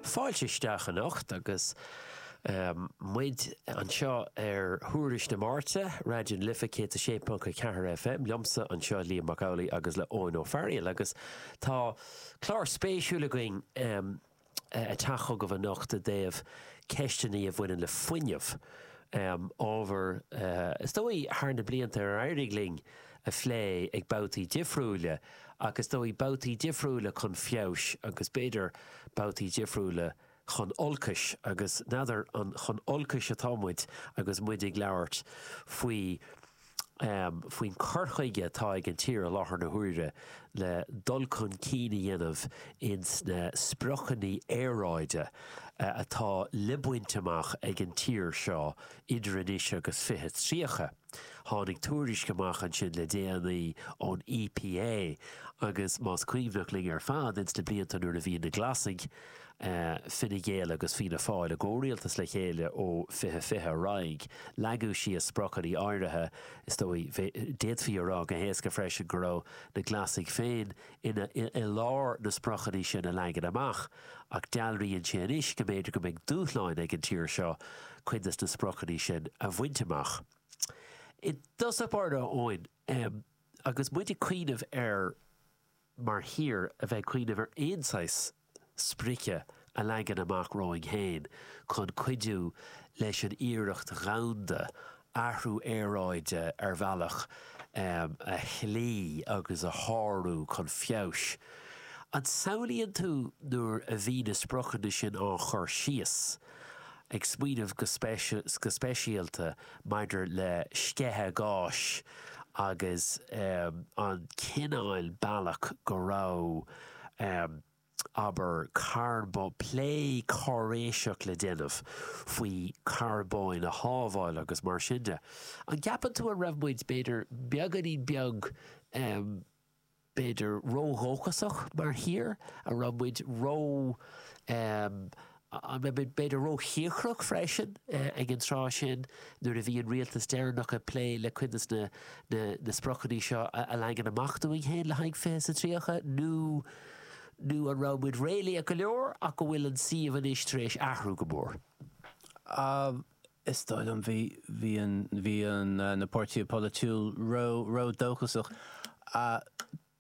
Fáilte isteach anocht agus muid anseo ar Thuairisc na Máirte, Raidió na Life 106.4 FM, liomsa anseo, Liam Mac Amhlaigh agus le Eoin Ó Fearaíl agus tá clár spéisiúil againn a teacht chugaibh anocht i dtaobh ceisteanna a bhaineann le fuinneamh, ábhar is dóigh thar na blianta ar éirigh linn a phlé ag babhtaí difriúile ach is dóigh babhtaí difriúile chun feabhais agus b'fhéidir babhtaí difriúile chun olcais agus n'fheadar an chun olcais atá muid agus muid ag labhairt faoi faoin cur chuige atá ag an tír i láthair na huaire le dul chun cinn a dhéanamh ins na spriocanna aeráide atá le baint amach ag an tír seo idir anois agus 2030. Tháinig tuairisc amach ansin le déanaí ón EPA agus más cuimhneach linn ar fad ins na blianta nuair a bhí na Glasaigh, Fine Gael agus Fianna Fáil i gcomhrialtas le chéile ó 2020 ar aghaidh, leagadh síos spriocanna áirithe. Is dóigh, d'fhéadfaí a rá go héasca freisin go raibh na Glasaigh féin ina i lár na spriocanna sin a leagan amach ach dealraíonn sé anois go mb'fhéidir go mbeidh dúshláin ag an tír seo cuid de na spriocanna sin a bhaint amach. I dtosach báire, a Eoin, agus muid ag cuimhneamh ar, mar thír, a bheith ag cuimhneamh ar aon saghas sprice a leagan amach romhainn féin chun cuidiú leis an iarracht dhomhanda athrú aeráide ar bhealach a chloí agus a shárú chun feabhais. An samhlaíonn tú nuair a bhí na spriocanna sin á gcur síos, ag smaoineamh go speisialta maidir le sceitheadh gáis agus an cineál bealach go raibh, Amh. Abair carbón. Plé cáiréiseach le déanamh faoi charbón a shábháil agus mar sin de. An gceapann tú an raibh muid, b'fhéidir, beagáinín beag, amh, b'fhéidir ródhóchasach mar thír? An raibh muid ró, amh, Amh, b'fhéidir, róchíocrach freisin ag an tráth sin nuair a bhí an rialtas deireanach ag plé le cuid de na spriocanna seo a leagan amach dúinn féin le haghaidh Fiche is a Tríocha nó nó an raibh muid réalaíoch go leor ach go bhfuil an suíomh anois tar éis athrú go mór? Is dóigh liom bhí, bhí an, bhí an, na páirtithe polaitiúil ró, ródhóchasach.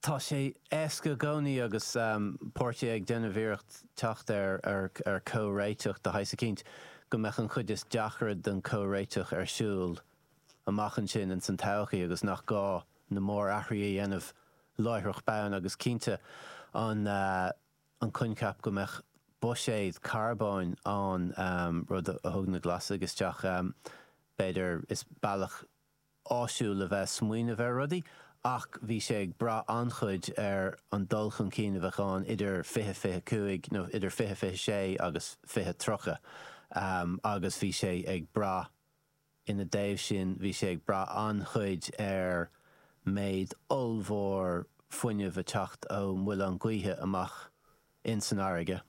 Tá sé éasca i gcónaí agus páirtithe ag déanamh iarracht teacht ar chomhréiteach de shaghas eicínt, go mbeadh an chuid is deacra den chomhréiteach ar siúl amach ansin ins an todhchaí agus nach gá na mór-athruithe a dhéanamh láithreach bonn agus cinnte an coincheap go mbeadh buiséad carbóin ann, rud a thug na Glasaigh isteach b'fhéidir, is bealach. áisiúil le bheith ag smaoineamh ar rudaí ach bhí sé ag brath an-chuid ar an dul chun cinn a bheadh ann idir 20, 20, 5 nó idir 20, 20, 6 agus 20, 30 agus bhí sé ag brath, ina dtaobh sin, bhí sé ag brath an-chuid ar méid ollmhór fuinnimh ag teacht ó mhuilinn ghaoithe amach in san fharraige.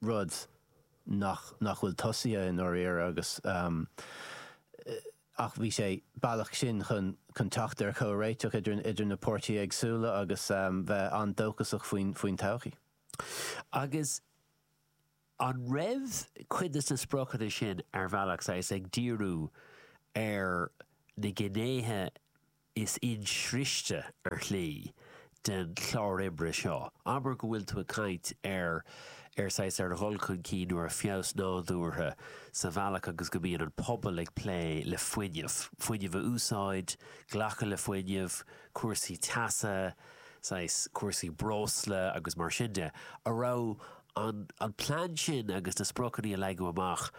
rud nach nach bhfuil tosaithe i ndáiríre agus ach bhí sé bealach sin chun chun teacht ar chomhréiteach idir an idir na páirtithe éagsúla agus bheith an-dóchasach faoin faoin todhchaí. Agus an raibh cuid de na spriocanna sin ar bhealach saghas ag díriú ar na gnéithe Is insroichte ar shlí den chlár oibre seo. Abair go bhfuil tú ag caint ar ar saghas ar dhul chun cinn nó ar fheabhas nádúrtha sa bhealach agus go mbíonn an pobal ag plé le fuinneamh, fuinneamh a úsáid, glacadh le fuinneamh, cúrsaí teasa, saghas cúrsaí breosla agus mar sin de, an raibh an plean sin agus na spriocanna a leagadh amach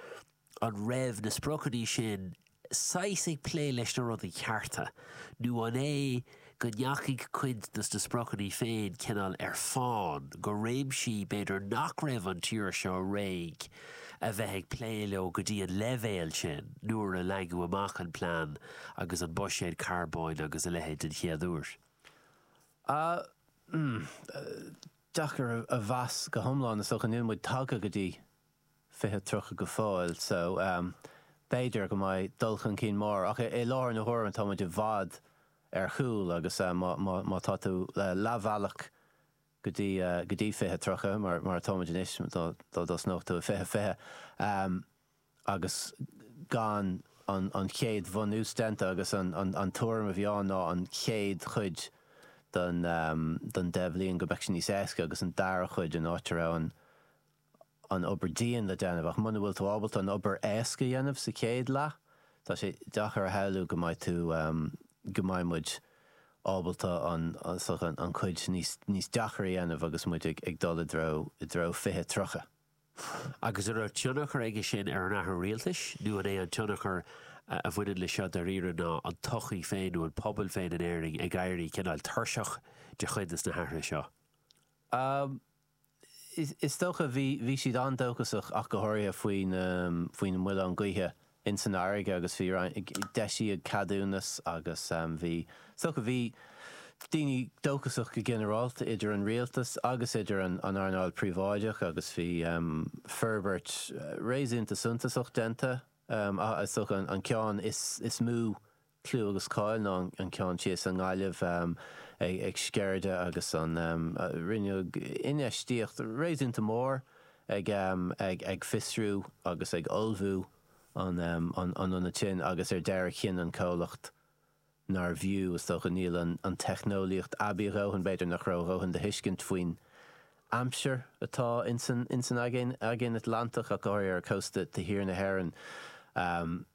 An raibh na spriocanna sin saghas ag plé leis na rudaí cearta nó an é go ndeachaigh cuid dos na spriocanna féin cineál ar fáin go réimsí b'fhéidir nach raibh an tír seo réidh le bheith ag plé leo go dtí an leibhéal sin nuair a leagadh amach an plean agus an buiséad carbóin agus a leithéid den chéad uair? Aaa, mm, deacair a mheas go hiomlán is dócha. Níl muid tagtha go dtí. 20, 30 go fóill so b'fhéidir go mbeidh dul chun cinn mór ach i láthair na huaire tá muid i bhfad ar chúl agus má tá tú leathbhealach go dtí 20, 30 mar atá muid anois dá dtosnódh tú i 20, 20 agus gan an chéad bhunús déanta agus an tuairim a bhí ann ná an chéad chuid den deich bhliain go mbeadh sé níos éasca agus an dara cuid in áit a raibh an an obair dian le déanamh ach muna bhfuil tú ábalta an obair éasca a dhéanamh sa chéad leath, tá sé deacair a shamhlú go mbeidh tú, go mbeidh muid ábalta an, an chuid níos, níos deacra a dhéanamh agus muid ag, ag dul i dtreo, i dtreo fiche, tríocha. Agus an raibh tionchar aige sin ar an athrú rialtais nó an é an tionchar a bhaineann le seo dairíre ná an tsochaí féin nó an pobal féin in Éirinn ag éirí cineáil tuirseach de chuid de na hathruithe seo? Is dócha, bhí siad an-dóchasach ach go háirithe faoi na muileáin gaoithe ins an fharraige agus bhí, d'eisíodh ceadúnas agus bhí, is dócha, bhí daoine dóchasach go ginearálta idir an rialtas agus idir an earnáil príobháideach agus bhí forbairt réasúnta suntasach déanta ach is dócha an ceann is mó clú agus cáil ná an ceann thíos i nGaillimh ag Sceirde agus rinneadh infheistíocht réasúnta mór ag fiosrú agus ag ullmhú an ionad sin agus ar deireadh chinn an comhlacht nár bhfiú, is dócha, níl an teicneolaíocht aibí a dhóthain, b'fhéidir nach raibh a dhóthain de thuiscint faoin aimsir atá ins an Aigéan Atlantach ach go háirithe ar chósta thiar na hÉireann.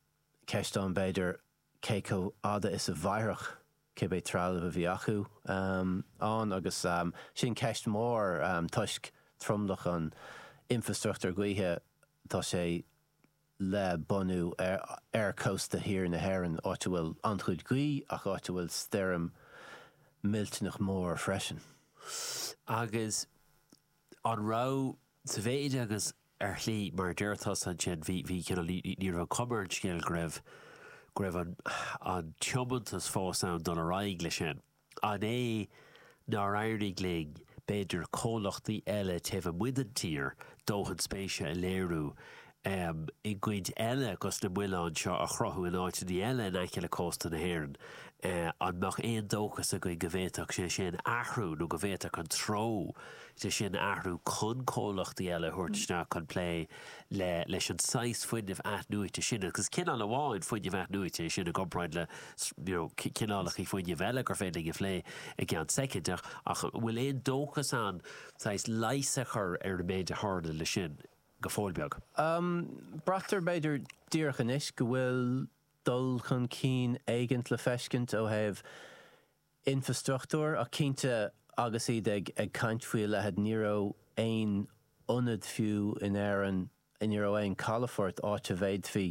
Ceist ann b'fhéidir cé chomh fhada is a mhairfeadh cibé trealamh a bhí acu ann agus sin ceist mhór toisc tromlach an infreastruchtúir gaoithe tá sé le bunú ar chósta thiar na hÉireann, áit a bhfuil an-chuid gaoithe ach áit a bhfuil stoirm millteanach mór freisin. Agus an raibh, sa mhéid agus ar shlí, mar a deir tusa ansin, bhí, bhí, cineál, ní, ní, ní raibh an chuma ar an scéal go raibh, go raibh an, an tiomantas fós ann dul ar aghaidh leis sin. An é nár éirigh linn, b'fhéidir, comhlachtaí eile taobh amuigh den tír, dóthain spéise a léiriú, em, i gcoinne le go's na muileáin seo a chruthú in áiteannaí eile in aice le cósta na hÉireann, eh, an mbeadh aon dóchas againn go bhféadfadh sé sin athrú nó go bhféadfadh an treo sin athrú chun comhlachtaí eile a thabhairt isteach chun plé le leis an saghas fuinnimh athnuaite sin agus cineál amháin fuinnimh athnuaite é sin i gcomparáid le you know cineálachaí fuinnimh eile gur féidir linn a phlé i gceann soicind ach ach an bhfuil aon dóchas ann saghas leigheas a chur ar an méid a tharla leis sin go fóill beag? Braitear b'fhéidir díreach anois go bhfuil dul chun cinn éigin le feiscint ó thaobh Infreastruchtúr, ach cinnte agus iad ag caint faoi a leithéid ní raibh aon ionad fiú in Éirinn, ní raibh aon calafort áit a bhféadfaí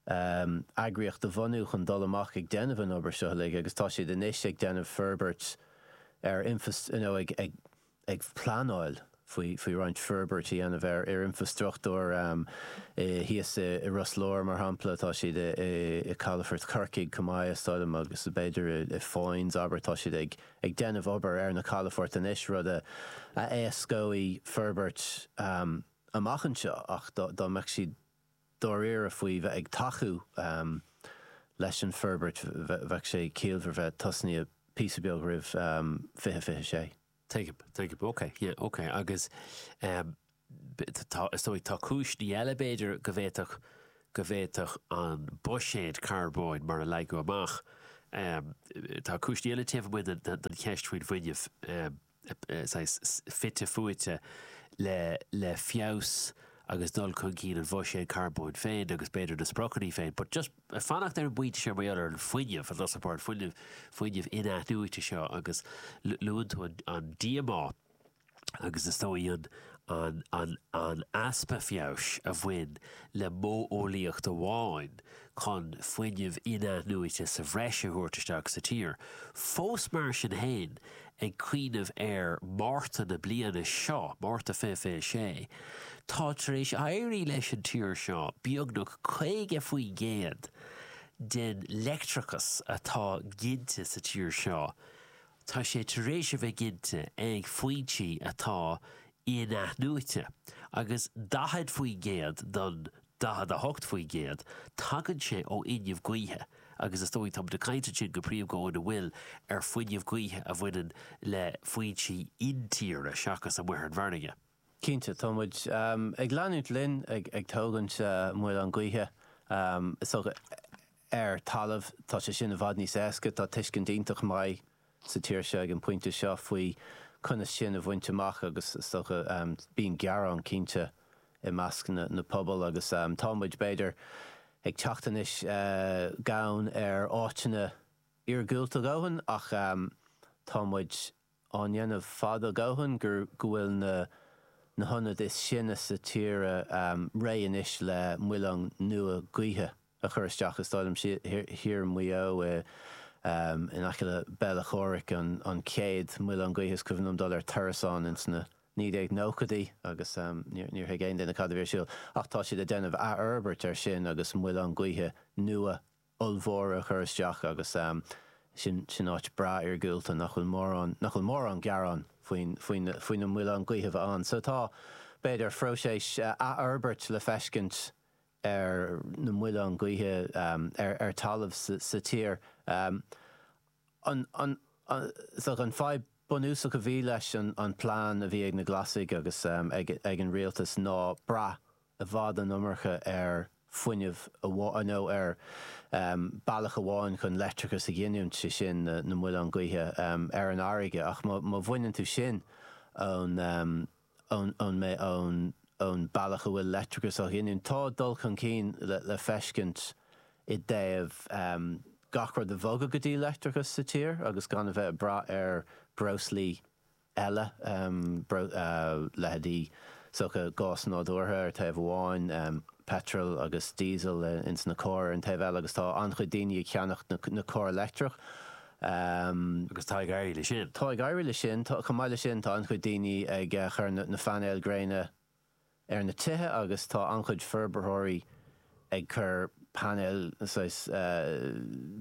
eagraíocht a bhunú chun dul amach ag déanamh an obair seo uilig agus tá siad anois ag déanamh forbairt ar infreastruchtúr, you know, ag. ag pleanáil faoi roinnt forbairt a dhéanamh ar infrastruchtúr thíos i Ros Láir, mar shampla. Tá siad i calafort Chorcaigh chomh maith, is dóigh liom, agus b'fhéidir i Foynes, abair. Tá siad ag déanamh obair ar na calafoirt anois, rud a éascóidh forbairt amach anseo. Ach dá mbeadh siad. dáiríre faoi bheith ag tacú leis an forbairt bheadh sé ciallmhar bheith tosnaithe píosa beag roimh fiche fiche sé. Tuigim, tuigim, ok, yeah, ok agus tá, is dóigh tá cúiseanna eile b'fhéidir go bhféadfadh, go bhféadfadh an buiséad carbóin mar a leagadh amach tá cúiseanna eile taobh amuigh den cheist faoin bhfuinneamh. saghas fite fuaite le feabhas agus dul chun cinn an bhuiséid carbóin féin agus b'fhéidir na spriocanna féin but just fanacht ar an bpointe seo mar gheall ar an fuinneamh an tá a fhios agat fuinneamh fuinneamh in-athnuaite seo agus luann tú an díomá agus is dóigh an an an an easpa feabhais a bhain le modheolaíocht amháin chun fuinneamh in-athnuaite sa bhreis a thabhairt isteach sa tír fós mar sin féin Ag cuimhneamh ar Mhárta na bliana seo, Márta 20 26, tá tar éis éirí leis an tír seo beagnach 50% den leictreachas atá ginte sa tír seo, tá sé tar éis a bheith ginte ag foinsí atá in-athnuaite, agus 40% don 48%, Tagann sé ó fhuinneamh gaoithe agus is dóigh, tá muid ag caint ansin go príomha go óna bhfuil ar fuinneamh gaoithe a bhaineann le foinsí intíre seachas amuigh ar an bhfarraige. Cinnte, tá muid ag leanúint linn ag tógaint muileann gaoithe, is dócha, ar talamh, tá sé sin i bhfad níos éasca, tá tuiscint iontach maith sa tír seo ag an bpointe seo faoi conas sin a bhaint amach agus is dócha bíonn gearán cinnte i measc na pobail agus tá muid b'fhéidir ag teacht anois gann ar áiteanna iargúlta a dhóthain ach tá muid á ndéanamh fad a dhóthain gur go bhfuil na na hionaid is sine sa tíre réidh anois le muileann nua gaoithe. a chur isteach is dóigh liom thiar i Maigh Eo in aice le Béal Átha Chomhraic an chéad mhuileann gaoithe is cuimhin liom dul ar turas ann ins na 1990idí agus níor thuig aon duine cad a bhí ar siúl ach tá siad ag déanamh athfhorbairt ar sin agus muileann gaoithe nua ollmhóra a chur isteach agus sin sin áit breá iargúlta nach bhfuil mórán nach bhfuil mórán gearán faoin faoin faoi na muileann gaoithe bheith ann so tá b'fhéidir phróiseas athfhorbairt le feiscint ar na muileáin gaoithe ar talamh sa tír. An fadhb bunúsach a bhí leis an plean a bhí ag na Glasaigh agus ag an rialtas ná brath i bhfad an iomarca ar fuinneamh amháin nó ar bealach amháin chun leictreachas a ghiniúint, sé sin na muileáin gaoithe ar an fharraige. Ach má bhaineann tú sin ón. ón meá ón ón bealach a bhfuil leictreachas á ghiniúint. Tá dul chun cinn le le feiscint i dtaobh gach rud a bhogadh go dtí leictreachas sa tír agus gan a bheith ag brath ar breoslaí eile, leithéidí sochaí gás nádúrtha ar thaobh amháin, peitreal agus diesel ins na cairr ar an taobh eile agus tá an-chuid daoine ag cheannacht na cairr leictreach Agus tá ag éirí le sin. Tá ag éirí le sin. Chomh maith le sin tá an-chuid daoine ag cur na phainéal gréine ar na tithe agus tá an-chuid forbarthóirí ag cur painéil, saghas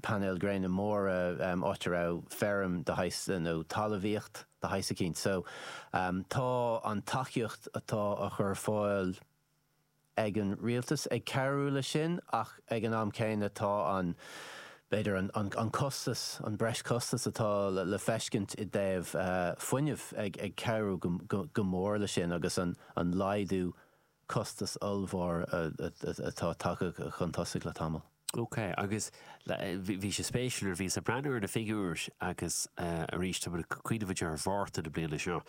painéal gréine móra, áit a raibh feirm de shaghas nó talamhaíocht de shaghas eicínt. So tá an tacaíocht atá á chur ar fáil, ag an rialtas ag cabhrú leis sin ach ag an am céanna tá an, b'fhéidir an an costas, an breis costas atá le feiscint i dtaobh fuinnimh ag ag cabhrú go go go mór leis sin agus an an laghdú costas ollmhór atá tagtha chun tosaigh le tamall. Ok, agus bhí sé spéisiúil nuair a bhíos ag breathnú ar na figiúir agus arís tá mé ag cuimhneamh díreach ar Mhárta na bliana seo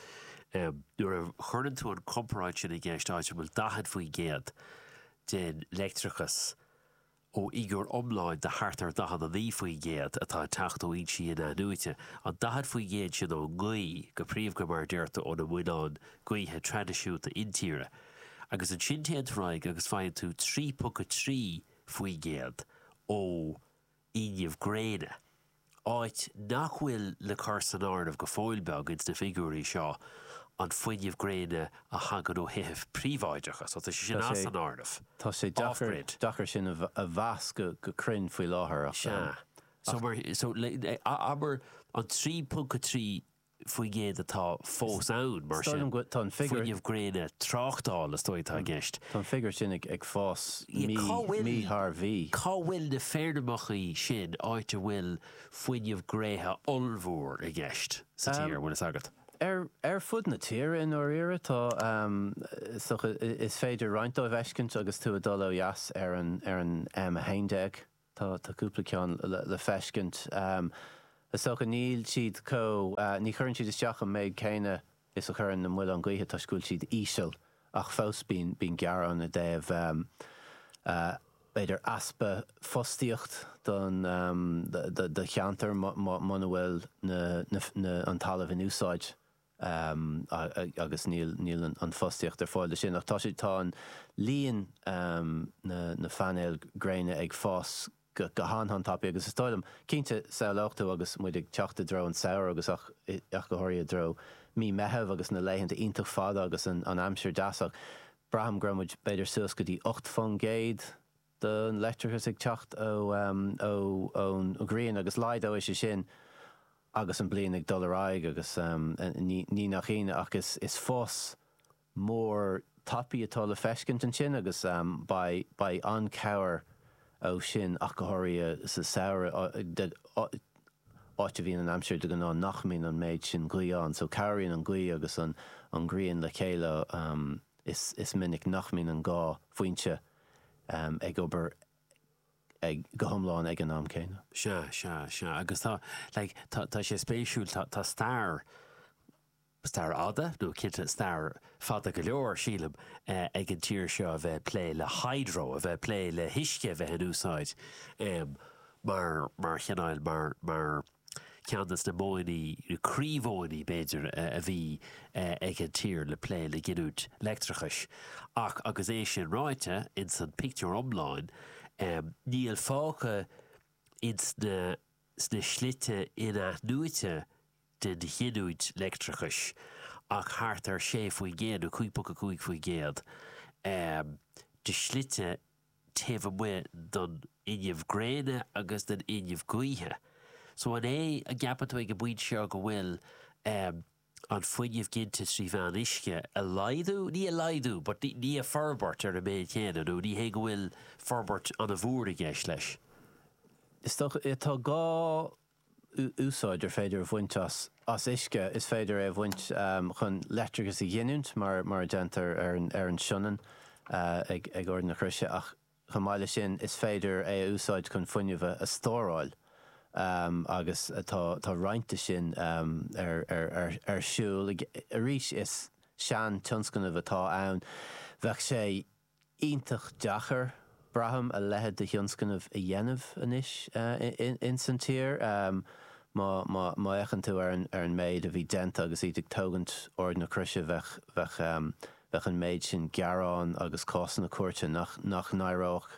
nuair a chuireann tú an comparáid sin i gceist áit a bhfuil 40% den leictreachas ó fhigiúr iomláin de thart ar 49% atá ag teacht ó fhoinsí inathnuaite, an 40% sin ón ngaoth go príomha mar a deir tú ó na muileáin gaoithe traidisiúnta intíre agus ansin téann tú ar aghaidh agus faigheann tú 3.3 faoin gcéad ó fhuinneamh gréine, áit nach bhfuil le cur san áireamh go fóill beag ins na figiúirí seo an fuinneamh gréine a thagann ó thithe príobháideacha, so tá sé sin as an áireamh. Tá sé deacair, deacair sin a mheas go, go cruinn faoi láthair ach, ach. Sea, so mar, so le, abair an 3.3 faoin gcéad atá fós ann, mar sin, fuinneamh gréine tráchtála, is dóigh, atá i gceist. Tá an figiúr sin ag fás mí thar mhí. Cá bhfuil na feirmeacha sin áit a bhfuil fuinneamh gréine ollmhór i gceist sa tír, an bhfuil fhios agat? Ar fud na tíre i ndáiríre, tá, is féidir roinnt dóibh fheiscint agus tú ag dul ó dheas ar an M11. Tá cúpla ceann le feiscint. Is dócha níl siad chomh, ní chuireann siad isteach an méid céanna is a chuireann na muilinn ghaoithe toisc go bhfuil siad íseal ach fós bíonn gearán i dtaobh b'fhéidir easpa fostaíocht don do cheantar muna bhfuil na an talamh in úsáid. um agus níl níl an fostaíocht ar fáil leis sin ach tá sé tá an líon um na na painéil gréine ag fás go go han han-tapaidh agus is dóigh liom cinnte shamhlófá agus muid ag teacht i dtreo an tsamhraidh agus ach ach go háirithe i dtreo mí Meitheamh agus na laethanta iontach fada agus an an aimsir dheas ach braithim go raibh muid b'fhéidir suas go dtí ocht faoin gcéad do leictreachas ag teacht ón ngrian agus laghdóidh sé sin agus an bhliain ag dul ar aghaidh agus ní nach ionadh ach is fás mór tapaidh atá le feiscint ansin agus beidh an-chabhair ó sin ach go háirithe sa samhradh áit a bhíonn an aimsir de ghnáth nach mbíonn an méid sin gaoth ann so cabhraíonn an gaoth agus an ghrian le chéile is minic nach mbíonn an dá fhoinse ag obair go hiomlán ag an am céanna. Sea, sea, sea. Agus tá, like, tá, tá sé spéisiúil, tá, tá stair, stair fada, nó cinnte stair fada go leor, sílim, ag an tír seo a bheith ag plé le hydro, a bheith ag plé le huisce a bheith in úsáid mar, mar chineál, mar, mar, Ceann de na modhanna, na croímhodhanna b'fhéidir, a bhí ag an tír le plé le giniúint leictreachais. Ach agus é sin ráite, ins an pictiúr iomlán, níl fágtha ins na sna slite in-athnuaite den ghiniúint leictreachais ach thart ar 6% nó 5.5% de shlite taobh amuigh den fhuinneamh gréine agus den fhuinneamh gaoithe. So an é a gceapann tú ag an bpointe seo go bhfuil ehm an fuinneamh ginte trí mheán uisce a laghdú, ní a laghdú but ní a forbairt ar an méid céanna nó ní hé go bhfuil forbairt an-mhór i gceist leis? Is dócha, tá dhá úsáid ar féidir a bhaint as uisce, is féidir é a bhaint chun leictreachas a ghiniúint mar a déantar ar an Sionainn ag Ard na Croise ach chomh maith leis sin is féidir é a úsáid chun fuinneamh a stóráil agus tá roinnt de sin ar siúl. Arís is seantionscnamh atá ann, beidh sé. iontach deacair, braithim, a leitheid de thionscnamh a dhéanamh anois ins an tír. Má fhéachann tú ar an méid a bhí déanta agus iad ag tógaint Ard na Croise bheadh an méid sin gearán agus cásanna cúirte nach n-éireodh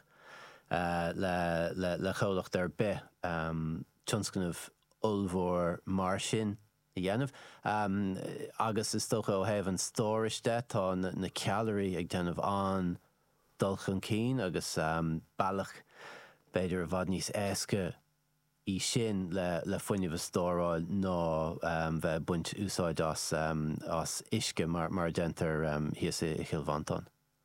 le comhlacht ar bith tionscnamh ollmhór mar sin. a dhéanamh agus is dócha ó thaobh an stórais de tá na ceallraí ag déanamh an-dul chun cinn agus bealach b'fhéidir i bhfad níos éasca é sin le fuinneamh a stóráil ná bheith ag baint úsáid as uisce mar a déantar thíos i gCill Mhantáin.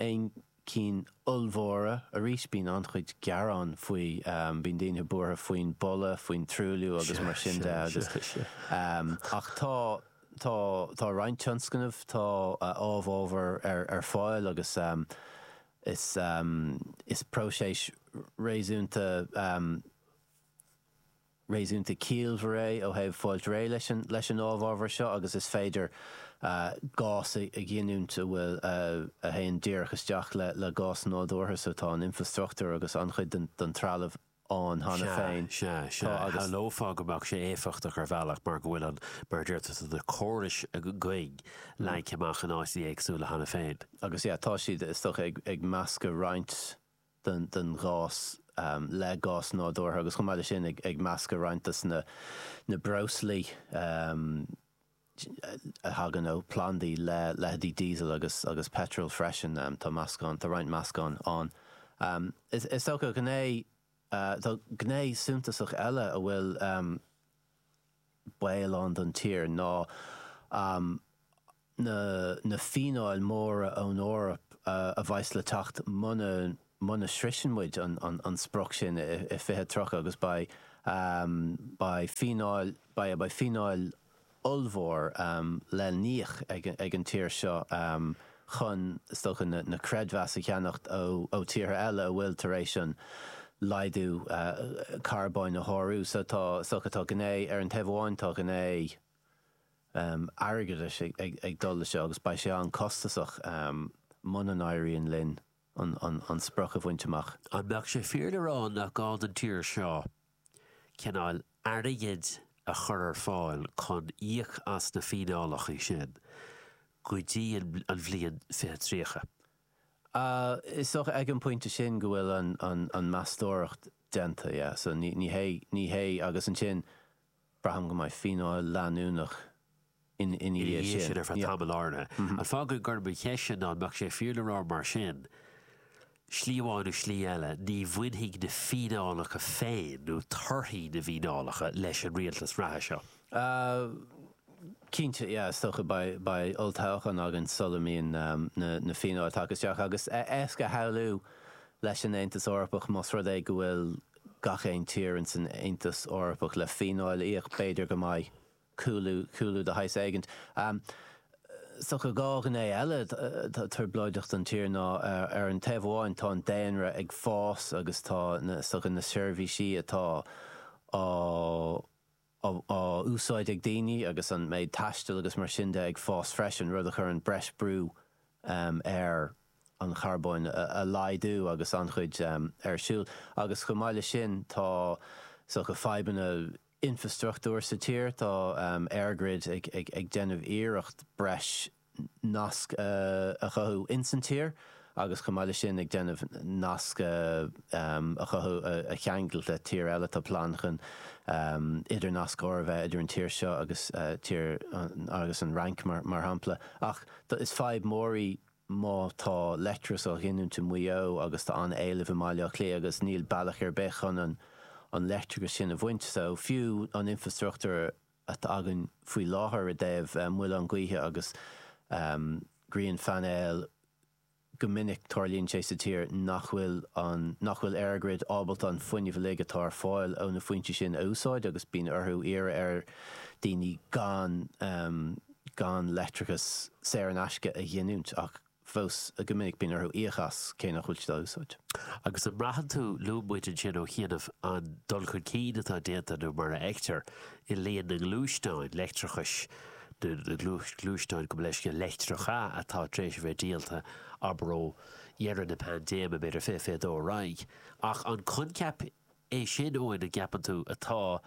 aon cinn ollmhóra. Arís bíonn an-chuid gearán faoi. Bíonn daoine buartha faoin boladh, faoin truailliú agus mar sin de agus ach tá tá tá roinnt tionscnamh tá amhábhar ar ar fáil agus is is próiseas réasúnta. réasúnta ciallmhar é ó thaobh fáil réidh leis an amhábhar seo agus is féidir gás a ghiniúint a bhfuil a théann díreach isteach le gás nádúrtha so tá an infrastruchtúr agus an-chuid den trealamh ann cheana féin. Sea, sea, sea. Shamhlófá go mbeadh sé éifeachtach ar bhealach mar go bhfuil an, mar a deirtear sa, na córais againn leagtha amach in áiteachaí éagsúla cheana féin. Agus, yeah, tá siad, is dócha, ag meascadh roinnt. den ghás le gás nádúrtha agus chomh maith le sin ag meascadh roinnt de na breoslaí a thagann ó plandaí le leitheidí diesel agus peitreal freisin. Tá meascán, tá roinnt meascán ann. Is dócha gné, tá gné suntasach eile a bhfuil. baol ann don tír ná na fíneáil mhóra ón Eoraip a bheas le teacht muna sroiseann muid an sprioc sin i 2030 agus beidh fíneáil ollmhór le n-íoc ag an tír seo. chun is dócha na creidmheas a cheannacht ó tíortha eile a bhfuil tar éis an laghdú carbóin a shárú. So tá is dócha, tá gné, ar an taobh amháin tá gné airgeadais ag dul le seo agus beidh sé an-costasach muna n-éiríonn linn an sprioc a bhaint amach. An mbeadh sé fíor le rá nach gá don tír seo cineál airgid a chur ar fáil chun íoc as na fíneálacha sin go dtí an bhliain fiche tríocha. Is dócha ag an bpointe sin go bhfuil an meastóireacht déanta, yeah, so ní hé, ní hé, agus ansin, Braithim go mbeidh fíneáil leanúnach ina dhiaidh sin ar feadh tamaill áirithe. Ach fágfaidh gurb í an cheist ná an mbeadh sé fíor le rá mar sin, slí amháin nó slí eile, ní bhainfidh na fíneálacha féin nó torthaí na bhfíneálacha leis an rialtas reatha seo? Cinnte, yeah, is dócha. Beidh olltoghchán againn sula mbíonn na fíneáil tagtha isteach agus is éasca a shamhlú leis an Aontas Eorpach más rud é go bhfuil gach aon tír in san Aontas Eorpach le fíneáil le íoc, b'fhéidir go mbeidh cúlú, cúlú de shaghas éigint. So tá dhá ghné eile atá trioblóideach don tír ná ar an taobh amháin tá an daonra ag fás agus tá na, so tá na seirbhísí atá á, á úsáid ag daoine agus an méid taistil agus mar sin de ag fás freisin, rud a chuireann breis brú ar an charbón a laghdú agus an-chuid ar siúl. Agus chomh maith leis sin tá, so tá fadhbanna infreastruchtúir sa tír, tá EirGrid ag déanamh iarracht breis nasc a chothú ins an tír agus chomh maith leis sin ag déanamh nasc a chothú a cheangailt le tír eile. Tá plean chun idirnascaire a bheith idir an tír seo agus tír agus an Fhrainc mar shampla. Ach is fadhb mór í má tá leictreachas á ghiniúint i Maigh Eo agus tá an-éileamh i mBaile Átha Cliath agus níl bealach ar bith chun an leictreachas sin a bhaint so fiú an infreastruchtúr atá againn faoi láthair i dtaobh muilte gaoithe agus grianphainéil go minic tarlaíonn sé sa tír nach bhfuil an nach bhfuil EirGrid ábalta an fuinneamh uilig atá ar fáil ó na foinsí sin a úsáid agus bíonn orthu iarraidh ar daoine gan gan leictreachas saor in aisce a ghiniúint ach fós go minic bíonn orthu íoc as cé nach bhfuil siad á úsáid. Agus an mbraitheann tú luamar ansin ó chianaibh an dul chun cinn atá déanta nó mar a fheictear i líon na ngluaisteán leictreach is na gluaisteáin, gabh mo leithscéal, leictreacha atá tar éis a bheith díolta, abair ó dheireadh na paindéime, b'fhéidir fiche, fiche dó ar aghaidh. Ach an coincheap É sin Eoin an gceapann tú atá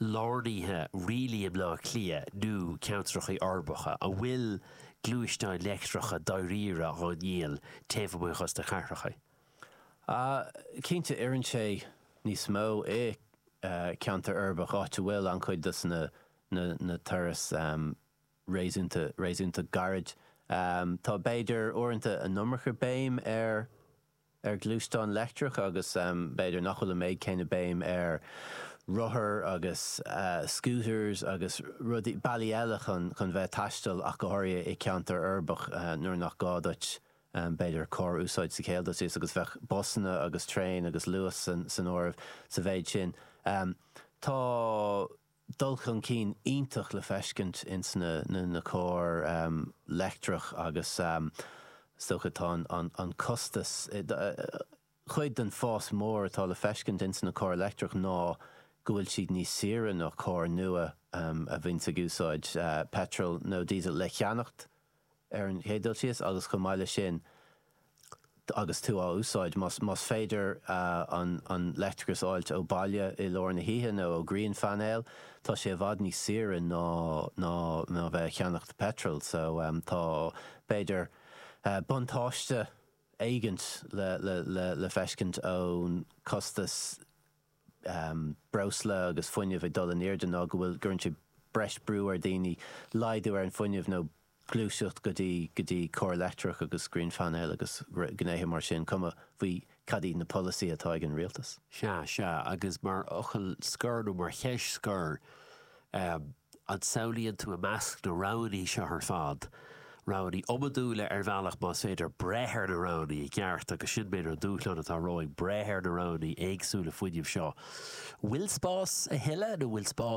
lárnaithe dáiríre i mBleá Cliath nó ceantracha uirbeacha? An bhfuil gluaisteáin leictreacha dáiríre á ndíol taobh amuigh dhos na cathracha? Ah, cinnte, oireann sé níos mó i ceantar uirbeach áit a bhfuil an-chuid dos na turais réasúnta réasúnta gairid. Tá b'fhéidir uaireanta an iomarca béim ar ar ghluaisteáin leictreacha agus b'fhéidir nach bhfuil an méid céanna béim ar rothair agus scooters agus rudaí, bealaí eile chun chun bheith ag taisteal ach go háirithe i ceantar uirbeach nuair nach gá duit b'fhéidir carr a úsáid sa chéad dul síos agus bheadh busanna agus traein agus Luas san áireamh sa mhéid sin. Tá. dul chun cinn iontach le feiscint ins na cairr leictreach agus is dócha tá an costas, chuid den fás mór atá le feiscint ins na cairr leictreach ná go bhfuil siad níos saoire ná cairr nua a bhíonns ag úsáid peitreal nó diesel le cheannacht. ar an chéad dul síos agus chomh maith leis sin agus tú á úsáid, más féidir an leictreachas a fháilt ó bhaile i lár na hoíche nó ó ghrianphainéil, tá sé i bhfad níos saoire ná, ná, ná a bheith ag ceannacht peitril. So tá, b'fhéidir, buntáiste éigint le, le feiscint ón costas. breosla agus fuinneamh ag dul in airde ná go bhfuil, gcuireann sé breis brú ar daoine, laghdú ar an fuinneamh nó gluaiseacht go dtí, go dtí cairr leictreach agus grianphainéil agus gnéithe mar sin, cuma faoi cad iad na polasaí atá ag an rialtas. Sea, sea, agus mar fhocal scoir nó mar cheist scoir, eh, An samhlaíonn tú i measc na roghanna seo ar fad roghanna iomadúla ar bhealach más féidir breith ar na roghanna i gceart agus sin b'fhéidir an dúshlán atá romhainn, breith ar na roghanna éagsúla fuinnimh seo. Bhfuil spás a thuilleadh nó bhfuil spás